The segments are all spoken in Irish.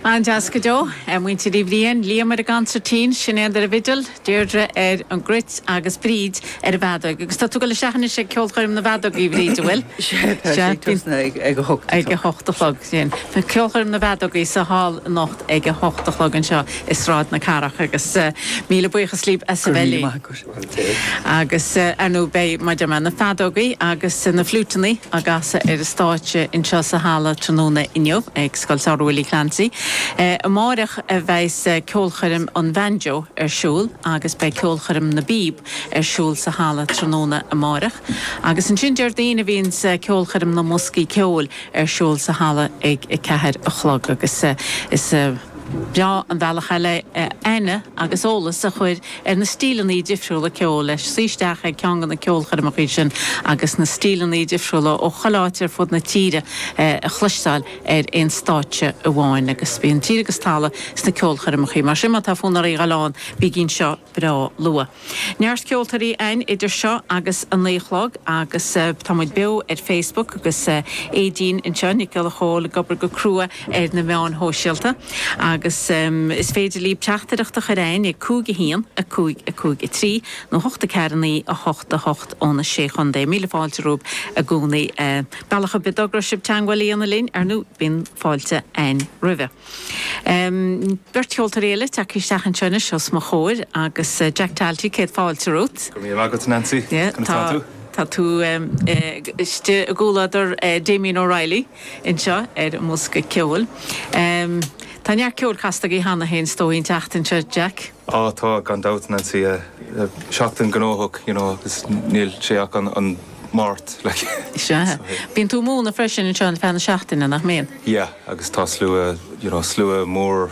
An-deas go deo, ar muintir Uí Bhriain, Liam ar an gconsairtín, Sinéad ar an bhfidil, Deirdre ar an gcruit agus Bríd ar an bhfeadóig. Agus tá tú ag goil isteach anois ag ceolchoirm na bhfeadógaí, a Bhríd, an bhfuil? Sea, tá sé ag tosnú ag ag a hocht a chlog. Ag a hocht a chlog, sin. Tá ceolchoirm na bhfeadógaí sa Hall anocht ag a hocht a chlog anseo i Sráid na Cathrach agus míle buíochas libh as a bheith linn. Go raibh míle maith agat. Agus, ar ndú, beidh, mar a dúirt mé, na feadógaí agus na fliúiteannaí, á gcasadh ar an stáitse anseo sa halla tráthnóna inniu ag Scoil Samhraidh Willie Clancy. Amáireach a bheas ceolchoirm an bhanjo ar siúl agus beidh ceolchoirm na bpíob ar siúl sa halla tráthnóna amáireach. Agus ansin Déardaoin a bhíonns ceolchoirm na mboscaí ceoil ar siúl sa halla ag a ceathair a chlog. Agus is breá an bealach eile é aithne agus eolas a chur ar na stíleanna difriúla ceoil leis, suí isteach ag ceann de na ceolchoirmeacha sin agus na stíleanna difriúla ó chuile áit ar fud na tíre a chloisteáil ar aon stáitse amháin. Agus bíonn tír agus talamh sna ceolchoirmeacha. Mar sin, má tá fonn oraibh a dhul ann, bígí anseo breá luath. Neart ceoltóirí a'ainn idir seo agus a naoi a chlog agus tá muid beo ar Facebook agus Éadaoin anseo, Nic Giolla Chomhaill, ag obair go crua ar na meáin shóisialta agus is féidir libh teachtaireacht a chur chugainn ag 5 1 5 5 3 nó 8 4 9 8 8 ó na Sé Chontae. Míle fáilte romhaibh i gcónaí. Bealach ar bith a dtogróidh sibh teagmháil a dhéanamh linn ar ndú bíonn fáilte againn roimhe. Beirt cheoltóir eile tagtha isteach anseo anois os mo chomhair agus Jack Talty, céad fáilte romhat. Go raibh míle maith agat Nancy. Conas atá tú? Tá tú istigh i gcomhluadar Damien O'Reilly. anseo ar an mbosca ceoil. Tá neart ceoil casta agaibh cheana féin is dóigh an tseachtain seo Jack. Á tá gan dabht Nancy, seachtain gnóthach you know agus níl sé ach an Máirt like. Sea. Bíonn tú ag múineadh freisin anseo ar feadh na seachtaine nach mbíonn? Yeah agus tá slua you know slua mór.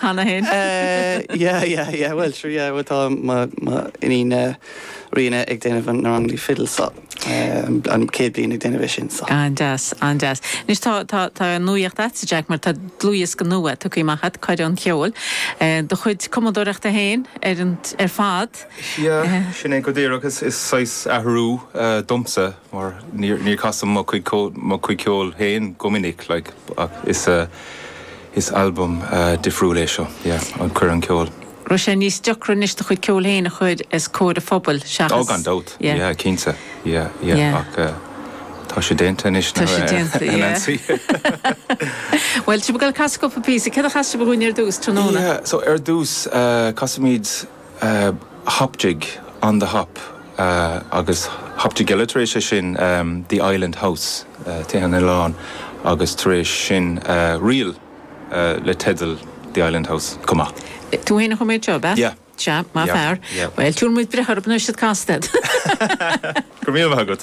Cheana féin. Eh, yeah, yeah, yeah, bhuel, sure, yeah, bhuel, tá mo, m'iníon Ríona ag déanamh na ranganna fidil so, eh, an céad bliain ag déanamh é sin so. An-deas, an-deas. Anois tá, tá, tá nuaíocht agat, Jack, mar tá dlúthdhiosca nua tugtha amach agat, Coire an Cheoil, eh, do chuid cumadóireachta féin ar an, ar fad. Yeah, sin é go díreach, is, is saghas athrú, eh, domsa. mar níor chas mé mo chuid ceoil féin go minic, like, ach is is albam difriúil é seo, yeah, Coire an Cheoil. raibh sé níos deacra anois do chuid ceoil féin a chur os comhair an phobail seachas. oh gan dabht, yeah, yeah, cinnte, yeah, yeah, yeah, ach tá sé déanta anois ná a Nancy. Bhuel, tá sibh ag goil ag casadh cúpla píosa, céard a chasfas sibh dhúinn ar dtús tráthnóna? yeah, so ar dtús, casfaimid. Hop jig On the Hop agus hop jig eile tar éis sin, The Island House, Tithe an Oileáin, agus tar éis sin ríl le teideal The Island House chomh maith. Tú fhéin a chum iad seo, ab ea? Yeah. Sea, maith fear. Yeah. Bhuel, tá muid buíoch as ucht iad a chasadh. Go raibh míle maith agat.